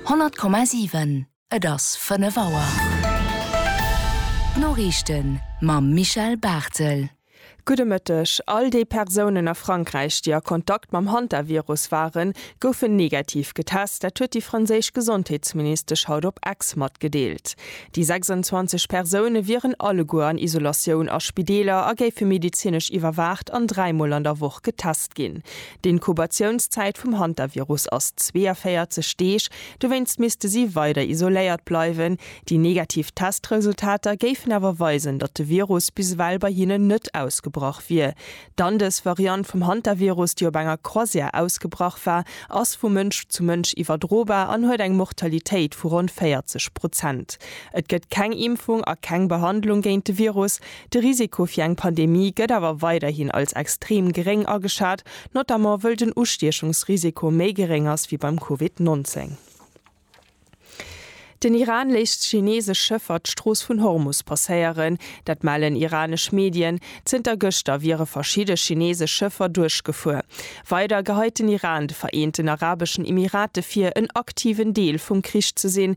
100,7 Et ass 5 Auer. D'Noriichten mam Michel Barthel. Gudde Mëtteg. All déi Persounen a Frankräich, déi a Kontakt mam Hantavirus waren, goufen negativ getest. Dat huet déi franséisch Gesondheetsministesch haut op Ex matgedeelt. Déi 26 Persoune wieren alleguer an Isolatioun a Spideeler a géife medezinesch iwwerwaacht an dräimol an der Woch getest ginn. D'Inkubatiounszäit vum Hantavirus ass 42 Deeg, dowéinst misste si weider isoléiert bleiwen. Déi negativ Testresultater géifen awer weisen, datt de Virus bis ewell bei hinnen net ausgebrach wier. D'Andes-Variant vum Hantavirus, déi op enger Croisière ausgebrach war, ass vu Mënsch zu Mënsch iwwerdrobar an huet eng Mortalitéit vu ronn 40 Prozent. Et gëtt keng Impfung a keng Behandlung géint de Virus, De Risiko fir eng Pandemie gëtt awer weiderhin als extrem geréng ageschat, notamment wëll den Ustiechungsrisiko méi geréng ass wéi beim Covid 19. Den Iran léisst chineesesch Schëffer d'Strooss vun Hormus passéieren. Dat mellen iranesch Medien. Zënter gëschter wiere verschidde chineesesch Schëffer duerchgefuer. Weider geheit den Iran de Vereenten Arabeschen Emirate vir, en aktiven Deel vum Krich ze sinn,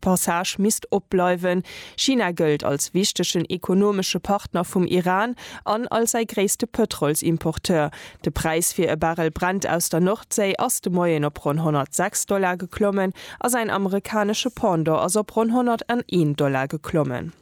Passage misst opbleiwen. China gëllt als wichtegen ekonomesche Partner vum Iran an als säi gréisste Pëtrolsimporteur. De Präis fir e Barrel Brent aus der Nordséi ass de Moien op ronn 106 Dollar geklommen a säin amerikanesche Pendant ass op ronn 101 Dollar geklommen.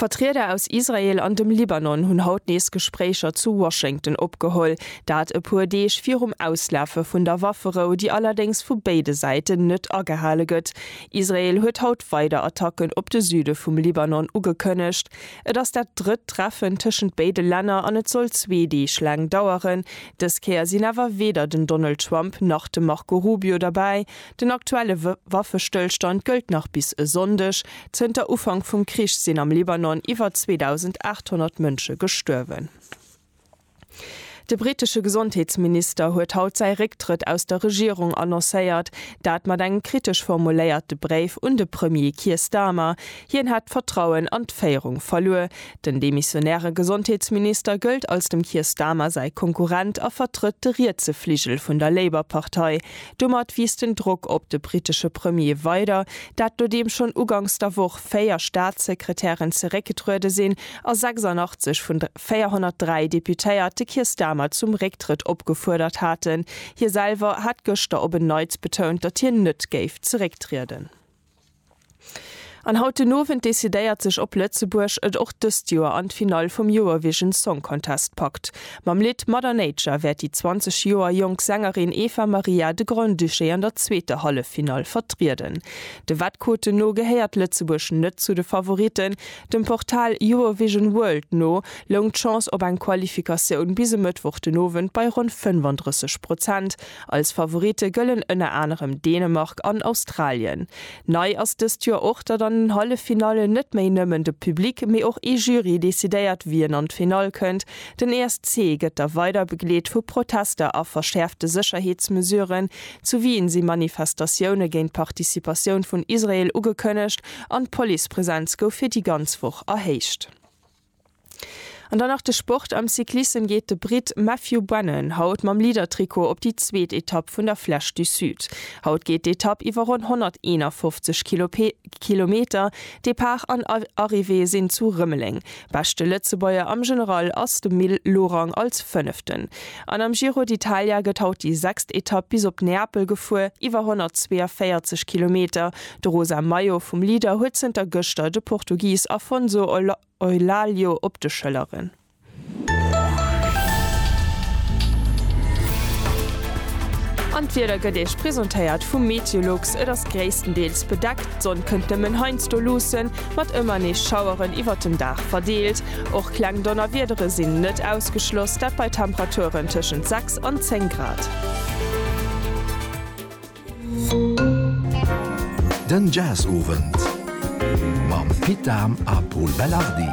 Vertrieder aus Israel an dem Libanon hunn haut nees Gespréicher zu Washington opgeholl. Dat e puer Deeg virum Auslafe vun der Wafferou, déi allerdéngs vu béide Säiten net agehale gëtt. Israel huet haut weider Attacken op de Süde vum Libanon ugekënnegt. Et ass dat drëtt Treffen tëschent béide Länner an et soll zwee Deeg laang daueren. Dës Kéier sinn awer weder den Donald Trump nach de Marco Rubio derbäi. Den aktuelle Waffestëllstand gëllt nach bis e Sonndeg. Zënter Ufank vum Krich sinn am Libanon iwwer 2.800 Mënsche gestuerwen. De brittesche Gesondheetsminister huet haut säi Récktrëtt aus der Regierung annoncéiert, dat mat engem kritesch formuléierte Bréif un de Premier Keir Starmer. Hien hätt d'Vertrauen an d'Féierung verluer, Den demissionäre Gesondheetsminister gëllt als dem Keir Starmer säi Konkurrent a vertrëtt de rietse Fligel vun der Labour-Partei. Domat wiisst den Drock op de brittesche Premier weider, dat nodeem schonn uganks der Woch 4 Staatssekretären zeréckgetruede sinn a 86 vun 403 Deputéiert de Keir Starmer zum Récktrëtt opgefuerdert haten. Hie selwer hat gëschter op en Neits betount, datt hien net géif zerécktrieden. An haut den Owend decidéiert sech op Lëtzebuerg et och dëst Joer an d'Finall vum Eurovision Song Contest packt. Mam Lidd Mother Nature wäert déi 20 Joer jonk Sängerin Eva Maria de Grand-Duché an der zweeter Halleffinall vertrieden. De Wettquoten no gehéiert Lëtzebuerg net zu de Favoritten. Dem Portal Eurovision World no loung d'Chance op eng Qualifikatioun bis e Mëttwoch den Owend bei ronn 35 Prozent. Als Favoritte gëllen ënner anerem Dänemark an Australien. Nei ass dëst Joer och, datt an den Halleffinallen net méi nëmmen de Public, mee och ee Jury decidéiert, wien an d'Finall kënnt. Den ESC gëtt da weider begleet vu Protester a verschäerfte Sécherheetsmesuren. Zu Wien si Manifestatioune géint d'Participatioun vun Israel ugekënnegt an d'Policepresenz gouf fir déi ganz Woch erhéicht. An dann nach de Sport, Am Cyclissem geet de Britt Matthew Brennan haut mam Leader-Trikot op déi zweet Etapp vun der Flèche du Sud. Haut geet d'Etapp iwwer ronn 151 Kilometer, Depart an Arrivée sinn zu Rëmeleng. Beschte Lëtzebuerger am General ass de Mil Lorang als Fënneften. An am Giro d'Italia gëtt haut déi sechst Etapp bis op Neapel gefuer, iwwer 142 Kilometer, De rosa Maillot vum Leader huet zënter gëschter de Portugis Afonso Eulalio op de Schëlleren. An d'Wieder gëtt Iech presentéiert vum Meteolux, et ass gréisstendeels bedeckt, d'Sonn kënnt nëmmen heiansdo luussen, mat ëmmer nees Schaueren iwwert den Dag verdeelt. Och kleng Donnerwiedere sinn net ausgeschloss, dat bei Temperaturen tëschent 6 an 10 Grad. Den Jazzowend mam Pit Dahm a Pol Belardi.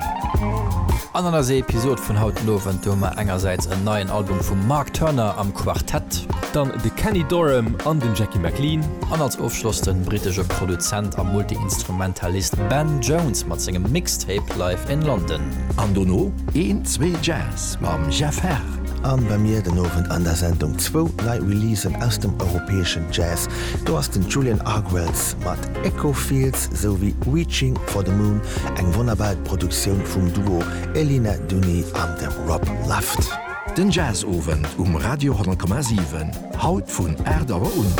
An an eiser Episod vun haut den Owend, do hu mer engersäits en neien Album vum Mark Turner am Quartett. Dann de Kenny Dorham an den Jackie McLean. An als Ofschloss den britesche Produzent a Multiinstrumentalist Ben Jones mat sengem Mixtape Live in London. An dono een, zwee Jazz Mam Jeff Herr an bei mir den Owend an der Sendung zwou nei Releasen aus dem europäeschen Jazz. Do ass den Julian Argwells mat Echo Fields sou wéi Reaching for the Moon, eng wonnerbar Produktioun vum Duo Elina Duni an dem Rob Luft. Den Jazzowend um Radio 10,7, haut vun 8 Auer un.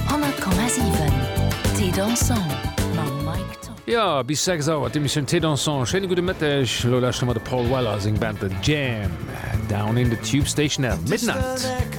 100,7 Thé dansant mam Mike Top. Jo, bis 6 Auer d'Emissioun Thé dansant. Schéine gudde Mëtteg. Elo lauschte mer de Paul Weller a seng Band The Jam, Down in the Tube Station at Midnight.